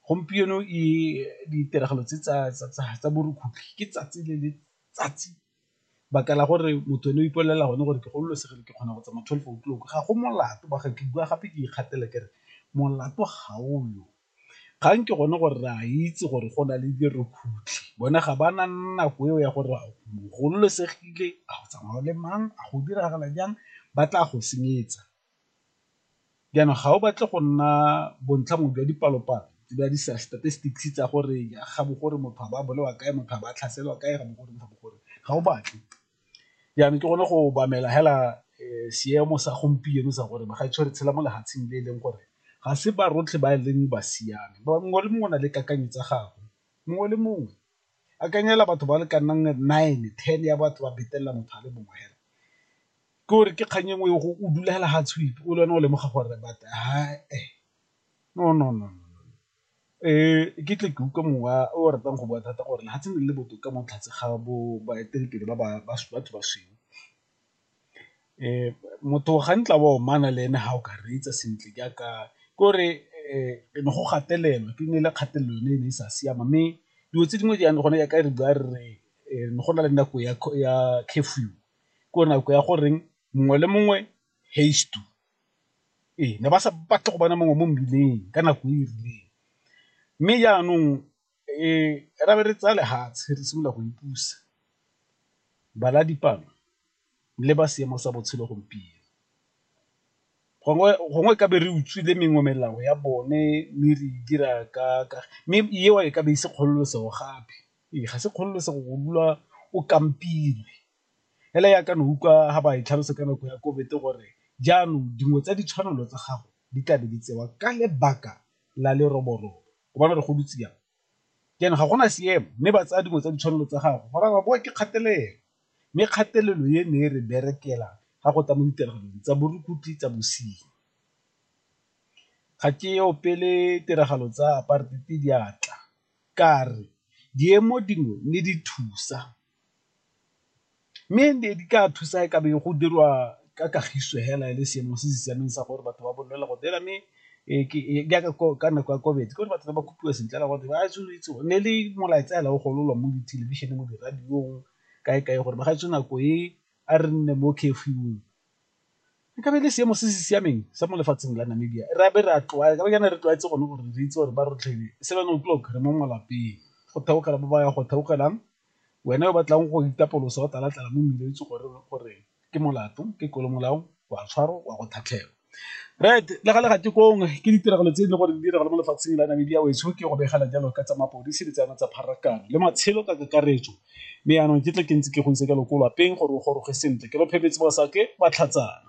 Gompieno e ditiragalo tse tsa borukgutlhi ke tsatsi le letsatsi baka la gore motho ene o ipolelela gone gore ke gololosegile ke kgona go tsamaya twelve o'clock ga go molato ba ga ke bua gape ke ikgatelela ke re molato ga o yo, ga nke gone gore re a itse gore go na le dirukutlhi bone ga ba na nako eo ya gore o gololosegile a o tsamaya o le mang a go diragala jang ba tla go senyetsa. Jaanong ga o batle go nna bontlhanngwe jwa dipalopalo tse ba di statistics tsa gore ga bo gore motho a ba a bolawa kae, motho a ba a tlhaselwa kae, ga bo gore ga bo gore ga o batle. Jaanong ke gone go obamela fela seemo sa gompieno sa gore bagaetsho re tshela mo lefatsheng le e leng gore ga se ba rotlhe ba e leng ba siame, mongwe le mongwe o na le kakanyo tsa gagwe, mongwe le mongwe. Akanyela batho ba le ka nnang nine, ten ya batho ba betelela motho a le mongwe fela. ke gore ke kgang e nngwe go o dula fela ga tswepe o le wena o lemoga gore but no no no ke tle ke utlwe mowa o ratang go bua thata gore lefatshe le le botoka mo tlhatswe ga bo baeteledipele ba batho ba sweu. Motho ga ntla wa omana le ene ga o ka reetsa sentle jaaka ke gore re ne go gatelelwa ke ne le kgatelelo yone e ne e sa siama, mme dilo tse dingwe jaana gone jaaka re bua re re ne go na le nako ya curfew. ko nako ya goreng mongwe le mongwe has to ee ne ba sa batle go bona mongwe mo mmileng ka nako e e rileng mme jaanong um ra be re tsaya lehatshe re simolola go ipusa bala dipalo le ba seemo sa botshelo gompieno gongwe ka be re utswile mengwe melao ya bone mme re e dira ka mme eo e ka be e se kgololosego gape Ee, ga se kgololesego go dula o kampilwe fela yaka ne utlwa ga ba e tlhalosa ka nako ya COVID gore jaanong dingwe tsa ditshwanelo tsa gago di tla be di tsewa ka lebaka la leroborobo gobane re go dutse jang jaanong ga gona seemo mme ba tsaya dingwe tsa ditshwanelo tsa gago gore ba boa ke kgatelelo mme kgatelelo e ne e re berekela ga go tla mo ditiragalong tsa borukutlhi tsa bosenyi. Ga ke opele tiragalo tsa apartheid diatla. Ka re diemo dingwe ne di thusa mme ne di ka thusa e ka be go dirwa ka kagiso fela e le seemo se se siameng sa gore batho ba bolela go mme jaaka ka nako ya COVID ke gore batho ba kopiwa sentle le gore ba itse gore ne le molaetsa fela o gololwa mo dithelebišeneng, mo di radio-ng kae-kae gore bagaetsho nako e a re nne mo curfew-ing e ka be e le seemo se se siameng sa mo lefatsheng la Namibia re a be re a tlwaela ka jaana re tlwaetse gone gore re itse gore ba re tlhele seven o'clock re mo malapeng go theogela ba ba ya go theogelang wena yo o batlang go itapolosa o tlala-tlala mo mmileng o itse gore gore ke molato ke kolo molao wa tshwaro wa go thathelwa. Right le ga le ga tekong ke ditiragalo tse e leng gore di diragalo mo lefatsheng la Namibia o e tshoke go begela jalo ka tsa mapodisi le tsona tsa pharakano le matshelo ka kakaretso Mme yaanong ke tle ke ntse ke go ntse ka lo ko lapeng gore o goroge sentle ke lo phepetse basake ba tlhatsana.